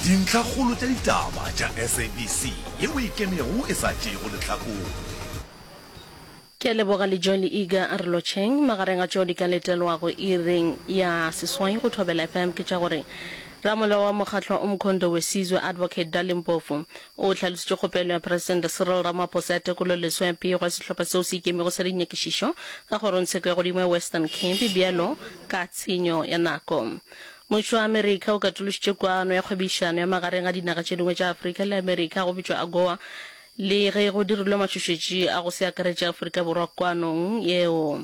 Dintlhakgolo tša ditaba tša SABC ye o e kenego e sa tšeego lehlakore. Ke a leboga le John Eager a re lotšheng. Magareng a tšeo di ka letelwago iring ya seswai go Thobela FM ke tša gore Ramolao wa Mokgatlwa Umkhondo Wesizwe, Advocate Dali Mpofu, o hlalositše kgopelo ya Presidente Cyril Ramaphosa ya tekololeswa ya pego ya sehlopha seo se ikemego sa dinyakišišo ka kgorongtsheko ya godimo ya Western Cape bjalo ka tshenyo ya nako. Mmušo wa Amerika o katološitše kwano ya kgwebišano ya magareng ga dinaga tše dingwe tša Afrika le Amerika go bitšwa AGOA le ge go dirilwe matšhošetši a go se akaretše Afrika Borwa kwanong yeo.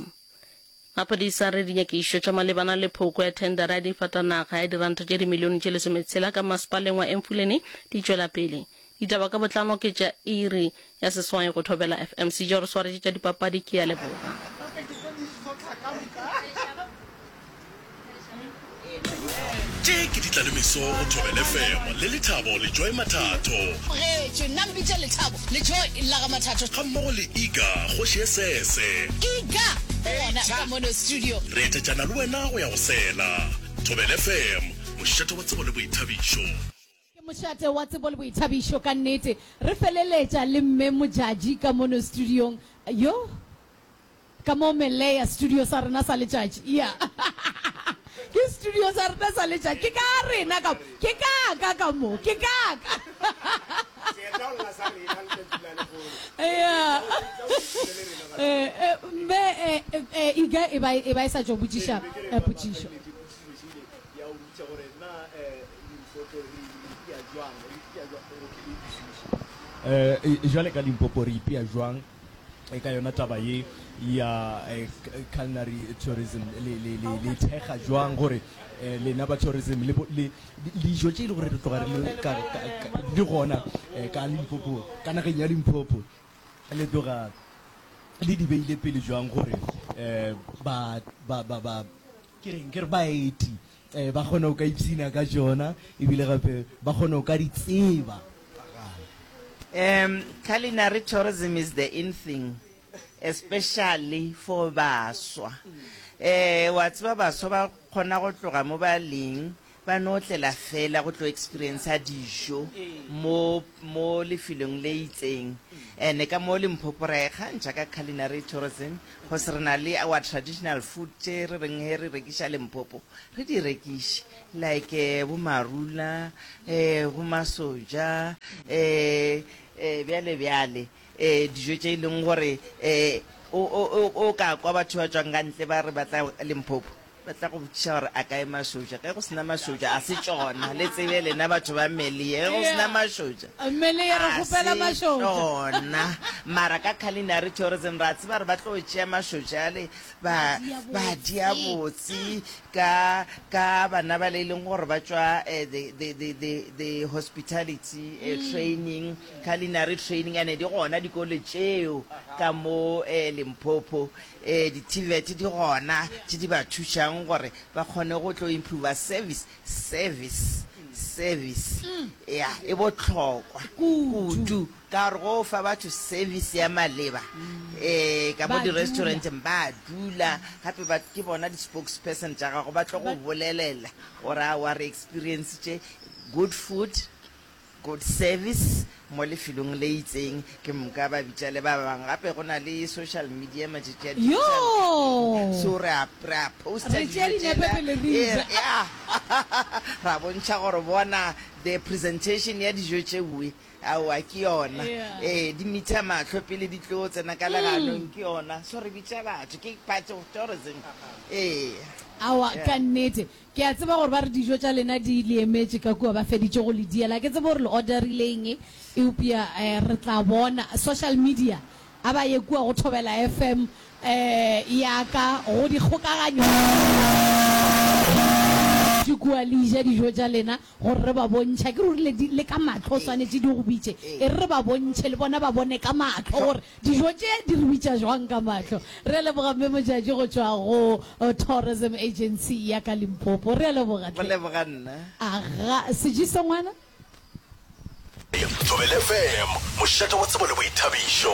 Maphodisa a re dinyakišo tša malebana le phoko ya thendara ya difatanaga ya diranta tše dimilione tše lesometshela ka masepaleng wa Emfuleni di tšwela pele. Ditaba ka botlalo ke tša iri ya seswai go Thobela FM. Sejo re swaretše tša dipapadi ke ya leboga. Tše ke di tla le meso go thobele femo le lethabo le joy mathatho getše nna mpitša lethabo le joy la ga mathatho ga mmogo le iga kgoši ye sese iga go bona ka mono studio re etetšana le wena go ya go sela thobele femo mošeto wa tsebo le boithabišo Ke mošate wa tsebo le boithabišo ka nnete. Re feleletša le Mme Modjadji ka mono studiong. Yoh! Ka mo Melea, studio sa rena sa letšatši. Iya. Ke studio sa rena sa letšatši. Ke ka rena ka mo. Ke ka ka ka mo. Ke ka ka. Seetla o lla sa rena letšatši la lehono. Iya. Seetla o šetile le rena batho. Eh, eh, Mme, eh, eh, Iga e ba e, e ba e sa tšwa botšiša, eh, potšišo. ya go bitša gore na limpopo re ipea jwang re ipea jwang gore ke le utlwisise um jwale ka limpopo re ipea jwang e ka yona taba ye ya eh, culinary tourism le le le le thekga jwang gore eh, lena ba tourism le bo- le- le- dijo tše e le gore re tloga re le ka- ka- ka- di gona eh, ka limpopo ka nageng ya limpopo le tloga le di beile pele jwang gore um ba ba ba ba Ke reng? Ke re baeti ba kgona go ka ipshina ka tšona ebile gape ba kgona go ka di tseba. Um, culinary tourism is the in thing especially for baswa. Eh, wa tseba baswa ba kgona go tloga mo ba leng Ba no otlela fela go tlo experiencer dijo mo, mo lefelong le itseng. Ene ka mo Limpopo ra e kgantšha ka culinary tourism, cause re na le our traditional food tše re reng he re rekiša Limpopo, re di rekiše. Like bo marula, um bo masoja, um bjale bjale, um dijo tše e leng gore um o, o, o, o ka kwa batho ba tšwang ka ntle ba re ba tla Limpopo. Ba tla go botšiša gore a kae mašotša. Ge go se na mašotša, ga se tšona. Le tsebe lena batho ba Melie, ge go se na mašotša, ga se tšona. Mara ka culinary tourism ra tseba gore ba tlo tšea mašotša ale ba ba dia botse ka ka bana ba le e leng gore ba tšwa eh, the, the, the, the, the hospitality eh, mm. training culinary training ane di gona dikole tšeo ka mo eh, limpopo Ee, di-TVET di gona tše di ba thušago gore ba kgone go tlo improver service, service, service. Ea, e bohlokwa kudu ka gore go fa batho service ya maleba. Ee, ka mo di-restauranteng ba dula gape ba, ke bona di-spokesperson tša gago, ba tlo go bolelela gore aowa re experiencitše good food, Good service mo lefelong le itseng ke mnka ba bitša le ba bang gape go na le social media matšatši a digital Yoo! so re a re a poster Re tšea dijo dinepe tšela pele re e ja. re a ra bontšha gore bona the presentation ya dijo tšeue aowa ke yona Yeah. ee di mitha mahlo pele di tlo tsena ka leganong ke yona so re bitša batho ke part of tourism ee Awa Yeah. ka nnete Ke a tseba gore ba re dijo tša lena di le emetše ka kua, ba feditše go le diela. Ga ke tsebe gore le orderile eng, eupša re tla bona. Social media, a ba ye kua go Thobela FM ya ka, go dikgokaganyo tša kua, le eja dijo tša lena. Gore re ba bontšha, ke ruri le di, le ka mahlo o swanetše di go bitše, e re re ba bontšhe le bona ba bone ka mahlo gore dijo tše di re bitša jwang ka mahlo. Re a leboga Mme Mojatši go tšwa go Tourism Agency ya ka Limpopo. Re a leboga Go tlhe. leboga nna. Aga, Sejiso ngwana. Thobela FM, mošate wa tsebo le boithabišo.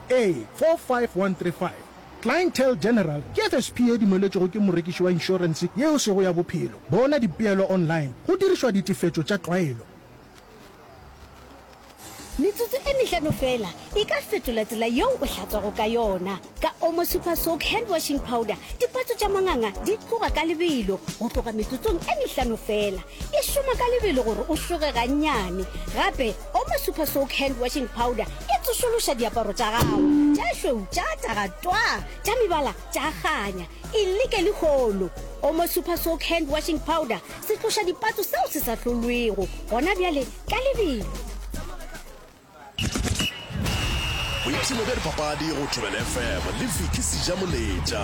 A45135 Clientele General ke FSP ye dumeletšwego ke morekiši wa inšorense ye o sego ya bophelo. Bona dipeelo online go dirišwa ditefetšo tša tlwaelo. Metsotso e mehlano feela e ka fetola tsela yeo o hlatswago ka yona. Ka Omo Super Soak Hand Washing Powder, dipatso tša manganga di tloga ka lebelo go tloga metsotsong e mehlano feela. E šoma ka lebelo gore o šoge gannyane. Gape, Oma Super Soak Hand Washing Powder e tsošološa diaparo tša gago tša šweu tša taga twaa tša mebala tša kganya. E leke lehono! Oma Super Soak Hand Washing Powder se tloša dipatso seo se sa hlolwego gona bjale ka lebelo. Boipshino bja dipapadi go Thobela FM le Vicky Sejamoletša.